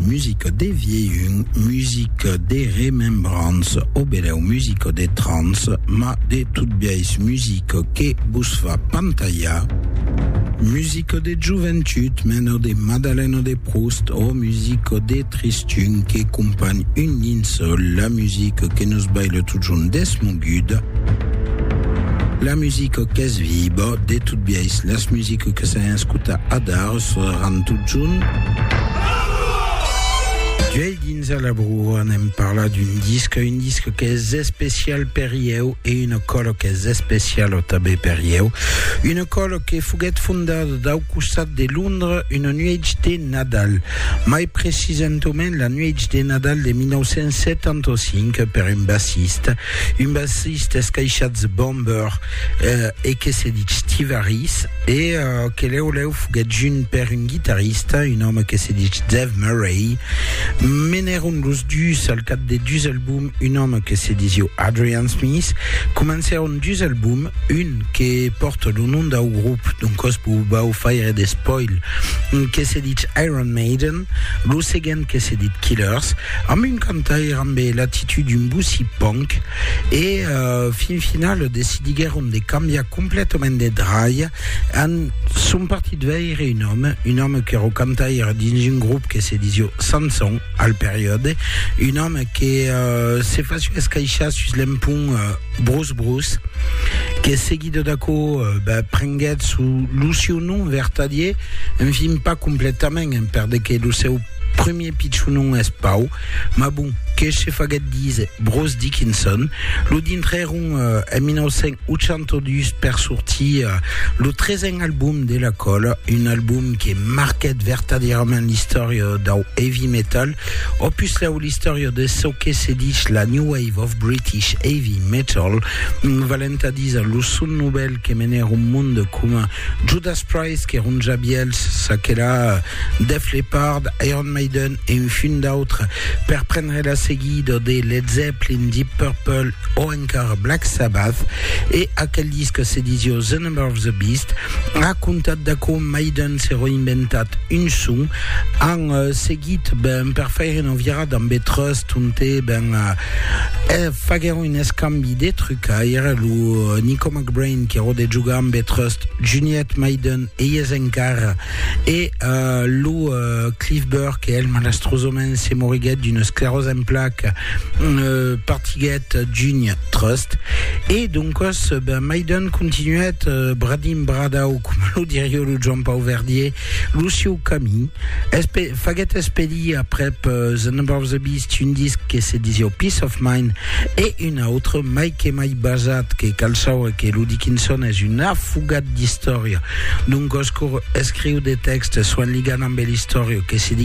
Musica de vielhun, musica de remembrança, o benèu musica de trança, ma de tot biais musica que vos fa pantalhar. Musica de joventut, mena de Madalena de Proust, o musica de tristun que companh un linçòl, la musica que nos baila totjorn desmoguda, la musica qu'es viba, de tot biais las musica que s'an escutat adar, Seràn tot junt. D'uèi dins a la broa n'èm parlat d'un disc, un disc qu'es especial per ieu e una còla qu'es especiala tanben per ieu, una còla que foguèt fondada dau costat de Londres una nuèch de Nadal, mai precisentament la nuèch de Nadal de 1975 per un bassista, un bassista escaishatz Bomber e que se ditz Steve Harris. E que lèu lèu foguèt junt per un guitarrista, un òme que se dich Dave Murray. Menèron los dus al cap de dus albums, un òme que se disiu Adrian Smith. Comencèron dus albums, un que pòrta lo nom dau grop, doncòs vos vau faire de spoil, que se dich Iron Maiden, lo seguent que se dit Killers, amb un cantaire ambe l'atitude d'un bossy punk, E fin final decidiguèron de cambiar completament de dralha en son partit veire un òme, un òme que ro cantaire dins un grop que se disió Sanson al periòde, un òme que se fasió escaishar sus l'empont Brus Brus, que seguido d'aquò prenguèt lo sieu nom vertadier, enfin pas completament, perdeque lo seu. Premier pichon non es pau, mas bon, que se faguèt díser Bruce Dickinson, lo dintrèron en 1982 per sortir lo tresen album de la còla, un album que marquèt vertadièrament l'istòria dau heavy metal, o puslèu l'istòria de çò que se dich la New Wave of British Heavy Metal, valent a díser lo son novèl que menèron monde coma Judas Priest que ronja bièlhs, çaquelà Def Leppard, Iron Maiden e un funt d'autres, per prendre la seguida de Led Zeppelin, Deep Purple o encara Black Sabbath, e aquel disc se disió The Number of the Beast, racontat de com Maiden se reinventat un son, an seguit ben per faire una virada amb The Trust onte ben faguèron un escambi de trucaire, lo Nico Brain qui rode jugar amb e Trust, Juniette Maiden ei es encara e uh, lo uh, Cliff Burke e el malastrosament se moriguet d'una esclerose en plaque uh, partiguet Junie Trust e doncos ben Maiden continuet uh, bradim bradau com lo diria lo Joan Pau Verdier Lo sieu camin es pe, faguèt espedir aprèp The Number of the Beast un disc que se disieu Peace of Mind e un autre mai que mai basat que cal saure que lo Dickinson es un afogat d'istòria d'un goscour escriu de tèxtes soen ligant ambe l'istòria que se diguèt